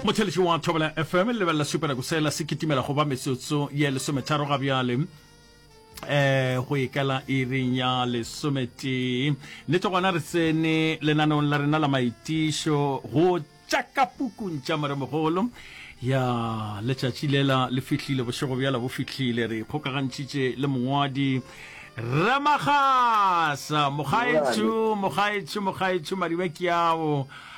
motheletši wa thobela fm le lebelela sepereko sela se kitimela go ba metsotso ye lesometharo ga bjale eh go ikela iring ya lesometee nnete gona re tsene lenaneong la rena la maitišo go tšaka pukung tša moremogolo ya letšatši lela le fihlile bošego bjala bo fihlile re kgokagantšhitše le mongwadi remagasa mogaetšo mogaetšo mogaetšo madibe ke ao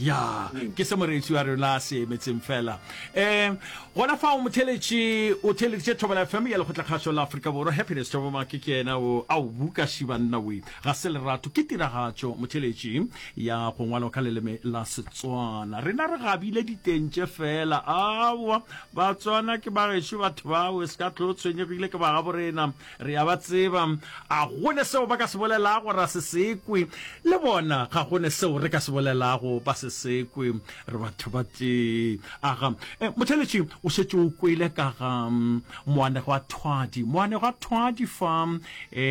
Ya, ke se moreetši wa rena a se emetseng fela. Um gona fao motheletši o theleditše thobo la fm ya lekgotlakgašo la afrika borwa happiness thobo make ke yena o ao buka šibanna we ga se lerato ke tiragatšo motheletši ya go ngwalwa ka leleme la setswana rena re gabile diteng tše fela aowa batswana ke bagešo batho bao e se ka tlo tshwenyegile ke bagaborena Re a ba tseba. A go ne seo ba ka se bolelago ra se se kwe? Le bona, ga go ne seo re ka se bolelago ba se se kwe. Re batho ba tee. A ga. E, motheeletši, o šetše o kwele ka ga moanegwa a thwadi, moanegwa a thwadi fa, e,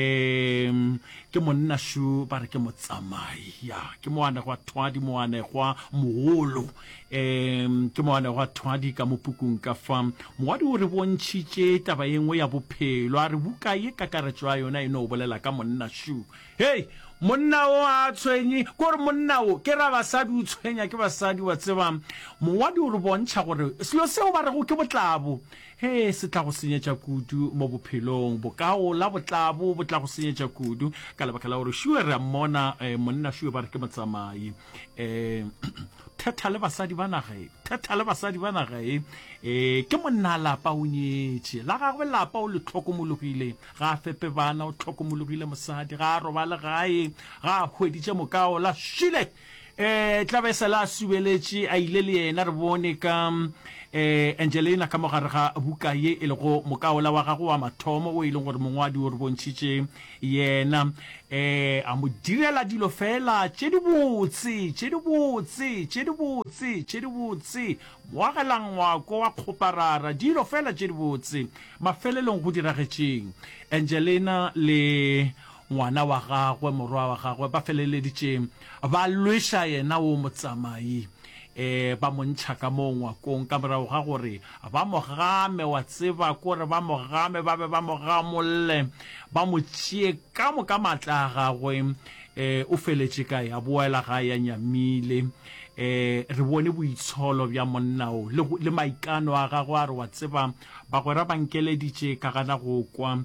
ke monnašu, ba re ke motsamai. Ya, ke moanegwa a thwadi, moanegwa mogolo. um ke moane gwa thwadi ka mopukung ka fa mowadi o re bontšhitše taba ye nngwe ya bophelo a re buka ye kakaretšo ya yona e no bolela ka monna shu hei monna o a tshwenye ke gore monna o ke ra basadi o tshwenya ke basadi wa tseba mowadi o re bontšha gore selo seo ba rego ke botlabo he se tla go senyetša kudu mo bophelong bokao la botlabo bo tla go senyetša kudu ka lebaka la gore shuwe re a mmona um monna shuwe ba re ke motsamai um thetha le basadi ba naga e thetha le basadi ba naga e um ke monna lapa o nyetše la gagwe lapa o le tlhokomologile ga a fepe bana o tlhokomologile mosadi ga a robale gae ga a hweditše mokao la šile um tlabe e se la subeletše a ile le yena re bone ka um angelina ka mogare ga buka ye e lego mokaola wa gago wa mathomo o e leng gore mongwadi o re bontšhitše Yena, ee, a mo direla dilo feela tše dibotse, tše dibotse, tše dibotse, tše dibotse, mo agela ngwako wa kgoparara, dilo feela tše dibotse. Mafelelong go diragetšeng? Angelena le ngwana wa gagwe, morwa wa gagwe, ba feleleditše Ba lweša yena wo motsamai, ee, ba mo ntšha ka moo ngwakong ka morago ga gore ba mo game, wa tseba, ke gore ba mo game, ba be ba mo gamolle, ba mo tšee ka moka maatla a gagwe. Ee, o feletše kae? A boela gae a nyamile. Ee, re bone boitsholo bja monna wo, le, le maikano a gagwe a re, wa tseba, Bagwera ba nkeleditše ka gana go kwa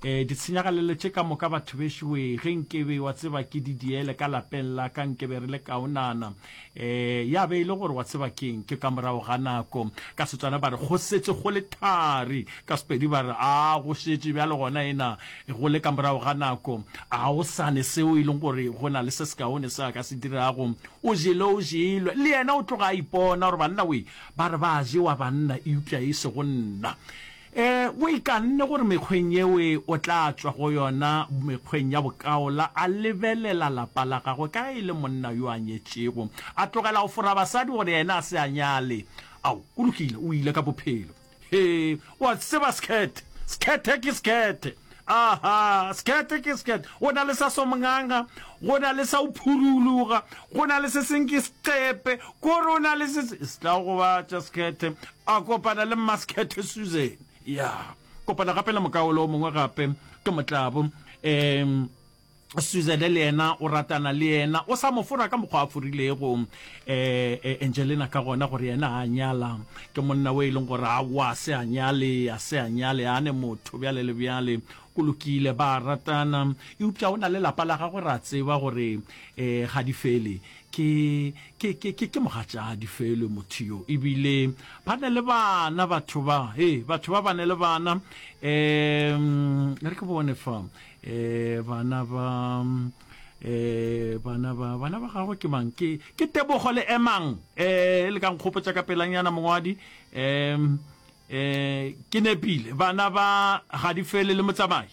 e, ditshenyagalelo tše ka moka batho bešo we, ge nkebe wa tseba ke di diele ka lapeng la ka nkebe re le kaonana e, ya be e le gore wa tseba keng ke ka morago ga nako ka Setswana ba re go setše go le thari ka Sepedi ba re a go šetše bjale gona ena go le ka morago ga nako a go sane seo e leng gore go na le se sekaone se a ka se dirago o jele o jelwe le yena o tloga a ipona gore banna we Ba re ba a jewa banna eupša e sego nna. E, o ikanne gore mekgweng yeo e o tla tšwa go yona mekgweng ya bokaola, a lebelela lapa la gagwe ka ge e le monna yo a nyetšego, a tlogela go fora basadi gore yena a se a nyale. Ao, go lokile, o ile ka bophelo. Hee, o a tseba Sekhethe, Sekhethe ke Sekhethe. Aha, Sekhethe ke Sekhethe. Go na le sa Somnganga, go na le sa Uphuruluga, go na le se seng ke Seqepe, ko re o na le se se. Se tla gobatša Sekhethe, a kopana le mma Sekhethe Susan. Ya, kopana gape le mokaolo o mongwe gape, ke Motlabo. Um. Suzette le yena o ratana le yena, o sa mo fora ka mokgwa a forilego eh, Angelina ka gona gore yena a nyala ke monna we e leng gore awa se a nyale a se a nyale a ne motho bjale le bjale go lokile ba ratana eupša o na le lapa la gagwe ra tseba gore eh ga di fele ke ke ke ke ke mogatšadi felo motho yo ebile ba ne le bana batho ba he batho ba ba ne le bana um re ke bone fa eh bana ba eh bana ba bana ba gago ke mang ke ke tebogo le emang eh le ka nkgopotsa ka pelanyana mongwadi um eh ke nepile bana ba ga di fele le motsamai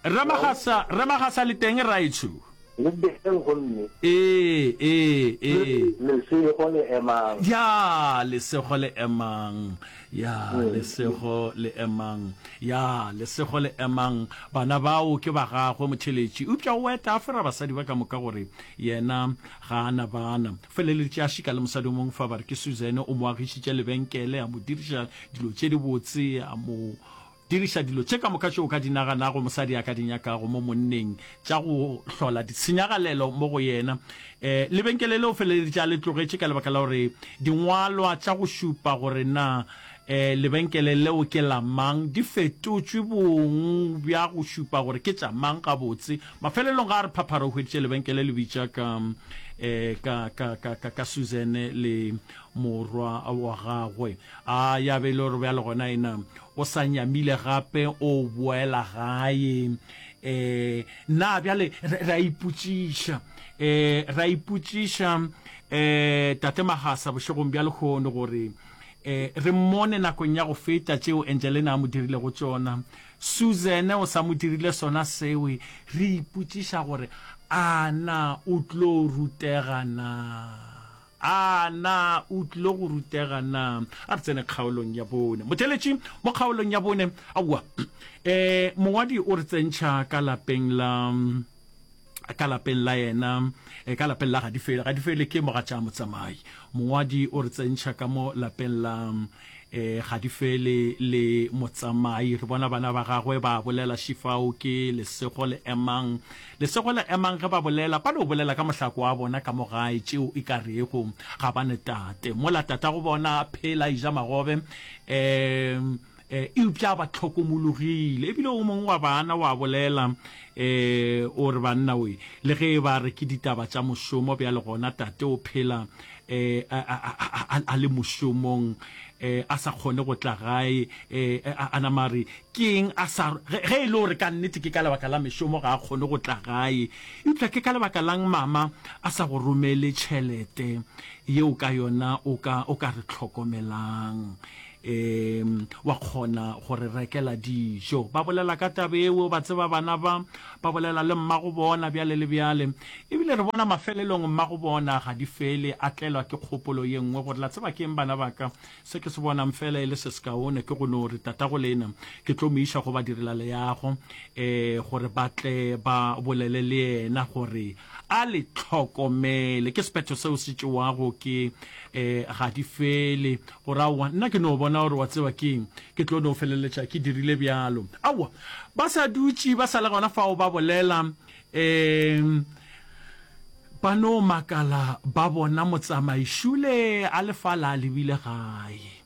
Rre Magasa, Rre Magasa le teng raetsho. Le teng gomme. Ee, ee, ee. Lesego le emang. Ya, lesego le emang. Ya, mm. lesego le emang. Ya, lesego le emang. Bana bao ke ba gagwe motheletši. Upša o eta a fera basadi ba ka moka gore yena ga ana bana. Feleletše a šika le mosadi o mongwe fa ba re ke Suzanne o mo agišitše lebenkele a mo diriša dilo tše dibotse a mo Diriša dilo tše ka moka tše o ka di naganago mosadi a ka di nyakago mo monneng tša go hlola ditshenyagalelo mo go yena. Lebenkele le o feleleditše a le tlogetše ka lebaka la gore dingwalwa tša go šupa gore na lebenkele leo ke la mang di fetotšwe bong bja go šupa gore ke tša mang gabotse. Mafelelong ga a re phaphara o hweditše lebenkele le bitša ka Susan le Morwa wa gagwe. A ya be e le gore bjale gona ena o sa nyamile gape o boela gae. Um na bjale re a ipotšiša, um re a ipotšiša um Tate Magasa bošegong bja lehono gore um re mmone nakong ya go feta tšeo Angelena a mo dirilego tšona, Susan o sa mo dirile sona seo. Re ipotšiša gore a na o tlo rutega na. A na o tlilo go rutega na? A re tsene kgaolong ya bone. Motheletši mo kgaolong ya bone, aowa. E, mongwadi o re tsentšha ka lapeng la, ka lapeng la yena, e, ka lapeng la Gadifele. Gadifele ke mogatša motsamai. Mongwadi o re tsentšha ka mo lapeng la, E, ga di fele le motsamai. Re bona bana ba gagwe ba bolela, Šifao ke lesego le emang. Lesego le emang ge ba bolela, ba no bolela ka mohlako wa bona ka mo gae, tšeo e ka rego ga ba ne tate. Mola tatago bona a phela, a eja magobe, e, e, eupša a ba hlokomologile. E bile o mongwe wa bana wa bolela, e, o re, Banna we, le ge e ba re ke ditaba tša mošomo, bjale gona tate o phela. eh, a, a, a, a, a le mošomong eh, a sa kgone go tla gae eh, a, a nama re keng a sa ge, ge e le gore ka nnete ke ka lebaka la mešomo ga a kgone go tla gae eupša ke ka lebaka lang mama a sa go romele tšhelete yeo ka yona o ka, o ka re tlhokomelang Eem, wa kgona go re rekela dijo. Ba bolela ka taba eo, ba tseba bana ba, ba bolela le mmagobona bjale le bjale. E bile re bona mafelelong mmagobona Gadifele a tlelwa ke kgopolo ye nngwe gore, la tseba ke eng bana ba ka, se ke se bonang feela e le se sekaone ke go no re, Tatago le ena ke tlo mo iša go badirelaleago, ee, gore ba tle ba bolele le yena gore A le hlokomele, ke sephetho seo se tšewago ke, e, ga di fele. Gore, Aowa, nna ke no bona gore wa tseba ke eng, ke tlo no feleletša ke dirile bjalo. Aowa, ba sa dutše ba sa le gona fao ba bolela, e, ba no makala ba bona motsamaišule a le fa la a lebile gae.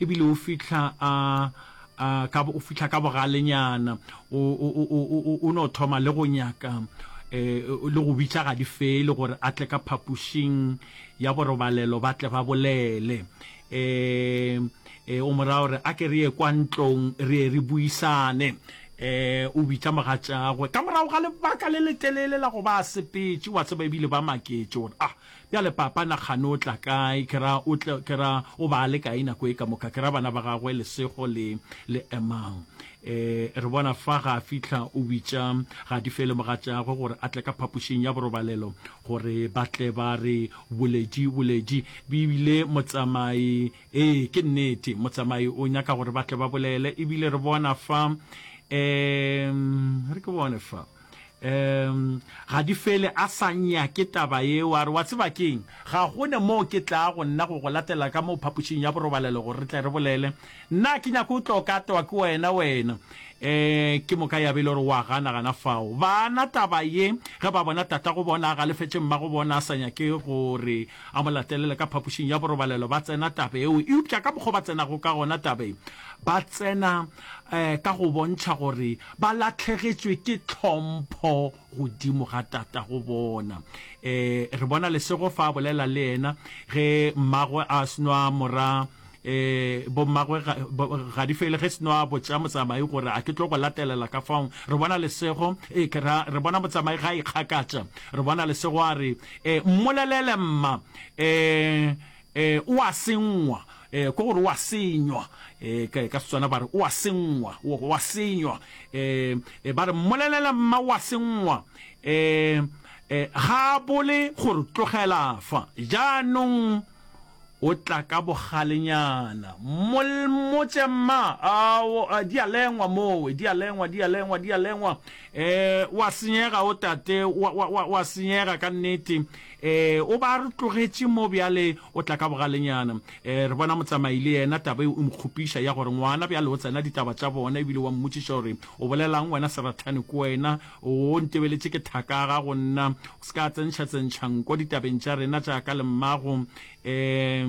e bile o fihla a, a, ka, o fihla ka bogalenyana, o, o, o, o, o, o no thoma le go nyaka um le go bitša Gadifele gore a tle ka phapošing ya borobalelo ba tle ba bolele. Um um o mo raya gore a ke re ye kwa ntlong re ye re buisane. Um o bitša mogatšagwe ka morago ga lebaka le letelele la go ba a sepetše, wa tseba e bile ba maketše gore, ah, Bjale, Papa, na kgane o tla kae? Ke ra o tle, ke ra o ba le kae nako e ka moka? Ke ra bana ba gagwe lesego le, le emang. E, re bona fa ga a fihla, o bitša Gadife le mogatšagwe gore a tle ka phapošing ya borobalelo, gore ba tle ba re boledi, boledi. Ebile motsamai, ee, ke nnete, motsamai o nyaka gore ba tle ba bolele. Ebile re bona fa, e, re ke bone fa. um ga di fele a sa nyake taba yeo a re wa tseba keng ga gone moo ke tlaa go nna go go latela ka moo phapošing ya borobalelo gore re tle re bolele nna ke nyako o tlo ka toa ke wena wena um ke moka ya be e le gore wa gana gana fao bana taba ye ge ba bona tata go bona a galefetše mma go bona a sa nyake gore a mo latelele ka phapošing ya borobalelo ba tsena taba eo eupša ka mokgwa ba tsenago ka gona taba e ba tsena ka go bontšha gore ba lahlegetšwe ke tlhompho godimo ga tatago bona. Re bona lesego fa a bolela le yena ge mmagwe a sno a mora bommagwe Gadifele ge sno a botša motsamai gore a ke tlo go latelela ka fao. Re bona lesego e ke ra re bona motsamai ga a ikgakatša. Re bona lesego a re, Mmolelele mma. O a sengwa, ke gore o a senywa. Ka Setswana ba re o a sengwa, o a senywa. Ba re mmolelela mma o a sengwa. Ga a bole gore tlogela fa jaanong o tla ka bogalenyana. Mmotse mma, a di a lengwa mowe, di a lengwa, di a lengwa, di a lengwa. O a senyega o tate, o a senyega ka nnete. Ee, o be a re tlogetše mo bjale, o tla ka bogalenyana. Ee, re bona motsamai le yena, taba yeo e mo kgopiša, ya gore ngwana bjale o tsena ditaba tša bona, e bile wa mmotšiša gore, O bolelaŋ wena serathane ko wena? O ntebeletše ke thaka ga go nna? O se ka tsentšhatsentšha nko ditabeng tša rena tša ka le mmago. Ee,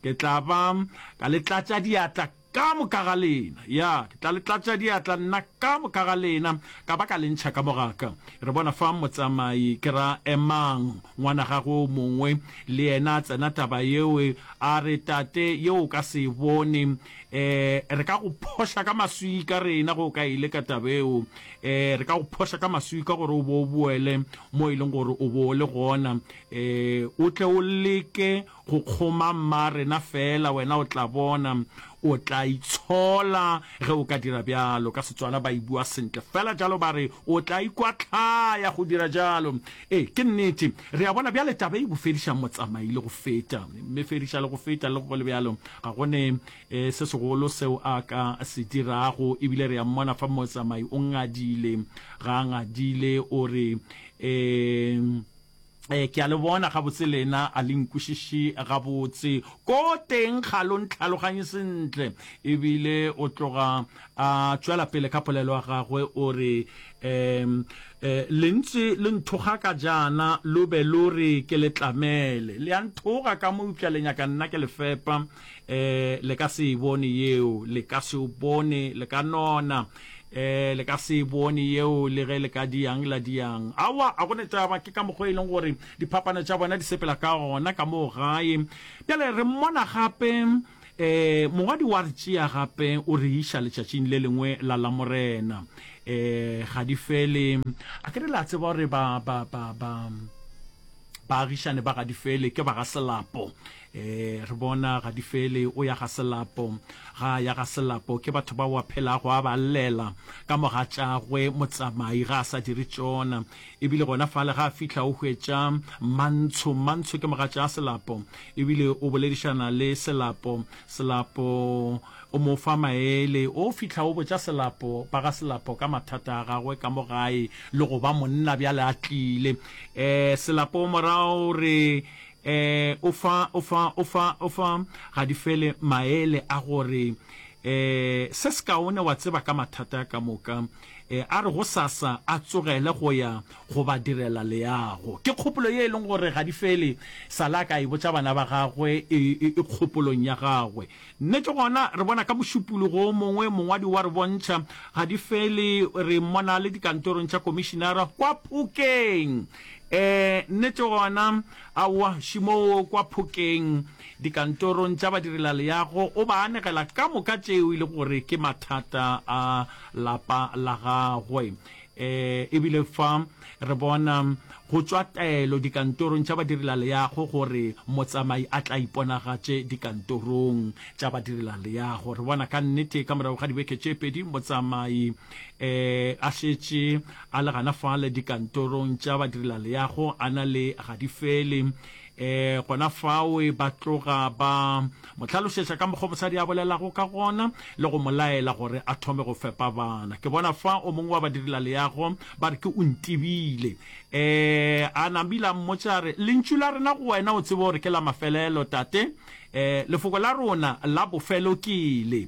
ke tla ba ka le tlatša diatla. Ka moka ga lena, ya, ke tla le tlatša diatla, nna, ka moka ga lena, ka ba ka le ntšha ka bogaka. Re bona fa motsamai, ke ra, emang, ngwana gagwe o mongwe, le yena a tsena taba yeo, a re, Tate, yeo o ka se e bone. E, re ka go phoša ka maswika, rena, ge o ka e leka taba yeo. E, re ka go phoša ka maswika gore o bo o boele mo e leng gore o bo o le gona, e, o tle o leke Go kgoma mma rena fela, wena o tla bona. O tla itshola ge o ka dira bjalo. Ka Setswana ba e bua sentle fela jalo ba re, o tla ikwahlaya go dira jalo. Ee, ke nnete. Re a bona bjale taba e bofediša motsamai le go feta. Mefediša le go feta. Le go le bjalo, ga go ne se segolo seo a ka se dirago. E bile re a mmona fa motsamai o ngadile. Ga a ngadile, o re, Ee. Ee, ke a le bona gabotse lena, a le nkwešiši gabotse. Ko teng ga lo ntlhaloganye sentle. Ebile o tloga a tšwela pele ka polelo ya gagwe, o re, Um, le ntše le nthoga ka jaana, lo be lo re ke le tlamele. Le a nthoga ka mo eupša le nyaka nna ke le fepa. eh le ka se e bone yeo le ka se o bone le ka nona eh le ka se e bone yeo le ge le ka diang la diang awa a gone taba ke ka mokgo e leng gore diphapano tša bona di sepela ka gona ka moo gae bjale re mmona gape eh mongwadi wa re tšea gape o re iša letšatšing le lengwe la la morena eh ga di fele a ke re la tseba gore ba ba ba ba baagišane ba ga di fele ke ba ga selapo E, re bona ga di fele. O ya ga Selapo, ga a ya ga Selapo. Ke batho bao a phelago a ba llela ka mogatšagwe motsamai, ga a sa dire tšona. E bile gona fale ga a fihla o hwetša Mantsho. Mantsho ke mogatša Selapo e bile o boledišana le Selapo. Selapo o mo fa maele. O fihla o botša Selapo ba ga Selapo ka mathata a gagwe ka mo gae le go ba monna bjale a tlile. E, Selapo morago o re, Ee, o fa, o fa, o fa, o fa ga di fele maele a gore ee, se sekaone wa tseba ka mathata a ka moka, ee, a re gosasa a tsogele go ya go ba direla leago. Ke kgopolo ye e leng gore ga di fele, Sala a ka e botša bana ba gagwe e, e, e kgopolong ya gagwe. Nnete gona re bona ka mošupologo o mongwe, mongwadi wa re bontšha ga di fele, re mmona le dikantorong tša komišinara kwa Phokeng. Ee, nnete gona, aowa, šemoo kwa Phokeng, dikantorong tša badirelaleago, o ba anegela ka moka tšeo e lego gore ke mathata a lapa la gagwe. E, ebile fa re bona go tšwa taelo dikantorong tša badirilaleago gore motsamai a tla iponagatše dikantorong tša badirilaleago, re bona ka nnete ka morago ga dibeke tše pedi motsamai e, a šetše a le gana fale dikantorong tša badirilaleago a na le ga di fele. E, gona fao e ba tloga ba mo hlalošetša ka mokgwa mosadi a bolelago ka gona le go mo laela gore a thome go fepa bana. Ke bona fa o mongwe wa badirela leago ba re ke o ntebile. E, a nambile a mmotša a re, Lentšu la rena go wena o tsebe gore ke la mafelelo, tate. E, lefoko la rona la bofelo ke le.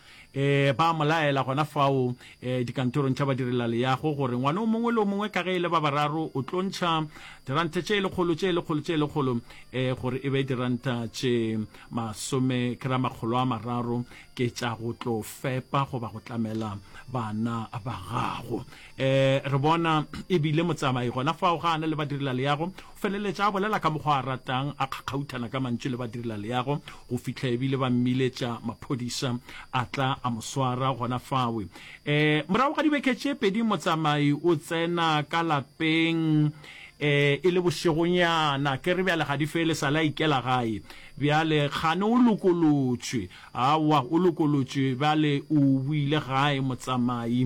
Ee, ba mo laela gona fao dikantorong tša badirelaleago gore ngwana o mongwe le o mongwe ka ge e le ba bararo o tlo ntšha diranta tše lekgolo, tše lekgolo, tše lekgolo, ee, gore e be diranta tše masome, ke ra makgolo a mararo, ke tša go tlo fepa goba go tlamela bana ba gago. Ee, re bona e bile motsamai gona fao ga a na le badirelaleago, O feleletša a bolela ka mokgwa a ratang, a kgakgauthana ka mantšu le badirelaleago go fihla e bile ba mmiletša maphodisa a tla a mo swara gona fawe. Um Morago ga dibeke tše pedi motsamai o tsena ka lapeng um e le bošegonyana, ke re bjale ga di fele e sa le a ikela gae. Bjale kgane o lokolotšwe? Aowa, o lokolotšwe bjale o boile gae motsamai.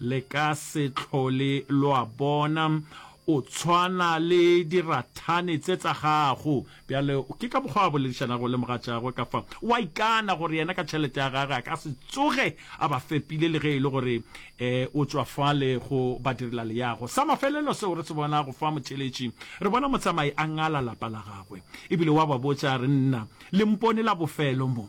Le ka se tlhole lwa bona. O tshwana le dirathane tse tsa gago. Bjale, ke ka mokgwa a boledišanago le mogatšagwe ka fa, o a ikana gore yena ka tšhelete ya gagwe a ka se tsoge a ba fepile le ge e le gore um o tšwa fale go badirelaleago. Sa mafelelo seo re se bonago fa motheeletši, re bona motsamai a ngala lapa la gagwe. E bile wa ba botša a re, Nna, le mpone la bofelo mo.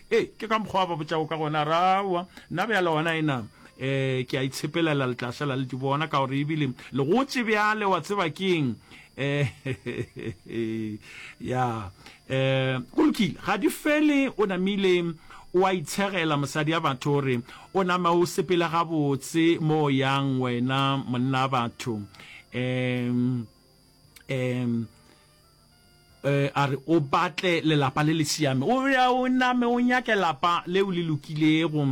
Ee, ke ka mokgwa a ba botšago ka gona, a re, Aowa, nna bjale gona ena, um ke a itshepelela le tla šala le di bona, ka gore ebile le gotše bjale, wa tseba ke eng, um ya, um go lokile, ga di fele, o namile o a itshegela, mosadi a batho, o re, o nama o sepele gabotse mo o yang wena monna a batho, um, um. A re o batle lelapa le le siame. O ya o name o nyake lapa leo le lokilego.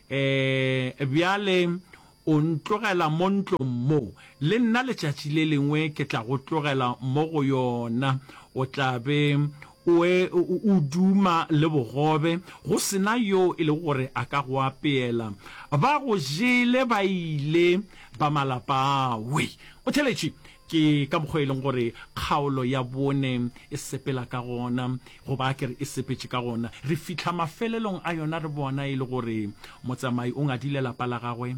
Bjale o ntlogela mo ntlong mo. Le nna letšatši le lengwe ke tla go tlogela mo go yona. O tla be o e o duma le bogobe, go se na yo e lego gore a ka go apeela. Ba go jele ba ile ba malapa ao. O theletše. Ke ka mokgwa e leng gore kgaolo ya bone e sepela ka gona, goba a ke re e sepetše ka gona. Re fihla mafelelong a yona re bona e le gore motsamai o ngadile lapa la gagwe.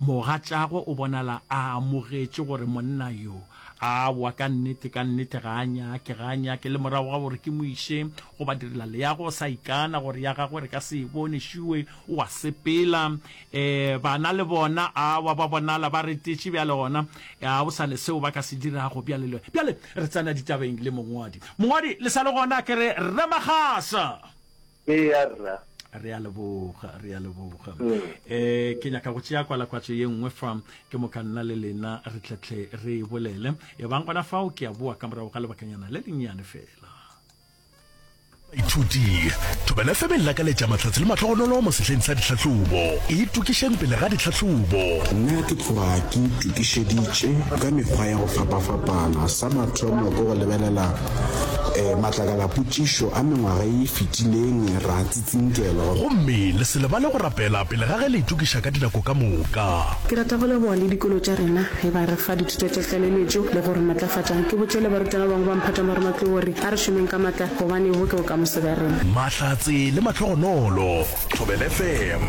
Mogatšagwe o bonala a amogetše gore monna yo, aowa, ka nnete, ka nnete ga a nyake, ga a nyake. Le morago ga gore ke mo iše go badirelaleago, o sa ikana gore ya gagwe re ka se e bone. Šue, o a sepela. Ee, bana le bona, awa, ba bonala ba retetše bjale, gona ga go sa ne seo ba ka se dirago bjale. Le bjale re tsena ditabeng le mongwadi. Mongwadi, le sa le gona? Ke re, Rre Magasa! Eya, Rra. Re a leboga, re a leboga. Ee, ke nyaka go tšea kwalakwatšo ye nngwe fa, ke moka nna le lena re tletle re e bolele. Ebang gona fao, ke a boa ka morago ga lebakanyana le lennyane feela. baithuti thobela fm e lakaletša mahlatse le mahlogonolo mo sehleng sa ditlhahlobo e tokišeng pele ga ditlhahlobo nna ke tloga ke itokišeditše ka mekgwa ya go fapafapana sa mathomo ke go lebelela um matlakala potšišo a mengwaga e fetileng ra Tsinkelo. Gomme le se lebale go rapela pele ga ge le itokiša ka dinako ka moka. Ke rata go leboga le dikolo tša rena ge ba re fa dithuto tša tlaleletšo le go re matlafatša. Ke botše le barutwana ba bangwe ba mphatang ba re matlou gore a re šomeng ka matla gobane bo ke bokamoso bja rena. Mahlatse le Mahlogonolo. Thobela FM,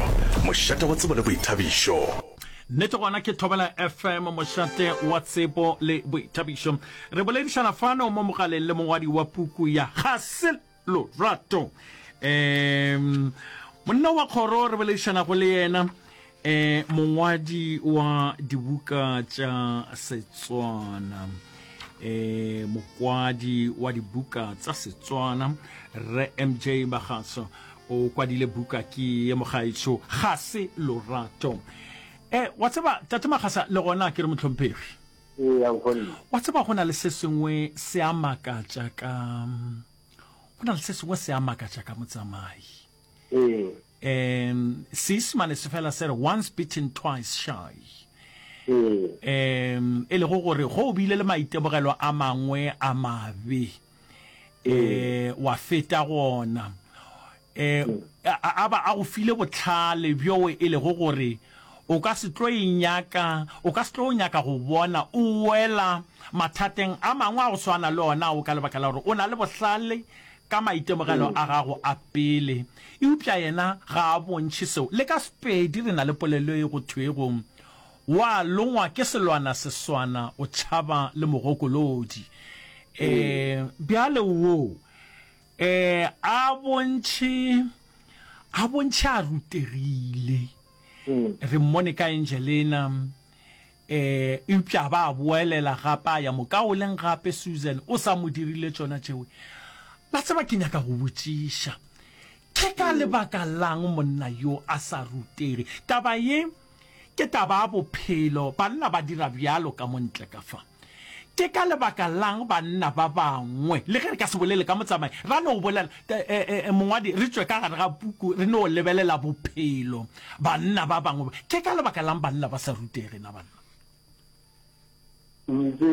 mošate wa tsebo le boithabišo. Nnete gona ke Thobela FM, mošate wa tsebo le boithabišo. Re boledišana fano mo mogaleng le mongwadi wa puku ya Ga se. Lorato. Um Monna wa kgoro re boledišanago le yena um mongwadi wa dibuka tša Setswana um mokwadi wa dibuka tsa Setswana Rre MJ Magatso o kwadile buka ke ye mogaetšo ga se Lorato. um Wa tseba Tate Magasa le gona ke re mohlomphegi. Eya nkgonne. Wa tseba go na le se sengwe se a makatša ka go na le se sengwe se a makatša ka motsamai Ee. um seisemane se fela se re once beaten twice shy Ee. um e lego gore go o bile le maitemogelo a mangwe a mabe e wa feta gona e a ba a go file botlhale bjo e lego gore o ka se tlo e nyaka o ka se tlo nyaka go bona o wela mathateng a mangwe a go swana le ona o ka lebaka la gore o na le bohlale ka maitemogelo a gago a pele eupša yena ga a bontšhe seo le ka sepedi re na le polelo e go thwego O a longwa ke selwana seswana, o tšhaba le mogokolodi. Um bjale wo um a bontšhe, a bontšhe a rutegile. Re mmone ka Angelena, um eupša a ba a boelela gape a ya mokaoleng gape. Susan o sa mo dirile tšona tšeo. La tseba, ke nyaka go botšiša, ke ka lebaka la'ng monna yo a sa rutege? Taba ye. Ke taba ya bophelo, banna ba dira bjalo ka mo ntle ka fa. Ke ka lebaka la'ng banna ba bangwe, le ge re ka se bolele ka motsamai, ra no bolela, ee, mongwadi, re tšwe ka gare ga puku re no lebelela bophelo, banna ba bangwe, ke ka lebaka la'ng banna ba sa rutege na banna? Ntše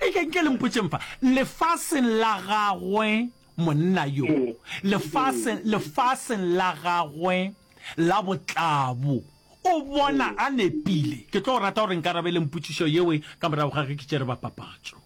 E ke nke le mpotšeng fa lefaseng la gagwe monna yo, lefaseng, lefaseng la gagwe la botlabo, o bona a nepile. Ke tlo rata gore nkarabeleng potšišo yewe ka morago ga ge ke tšere bapapatšo.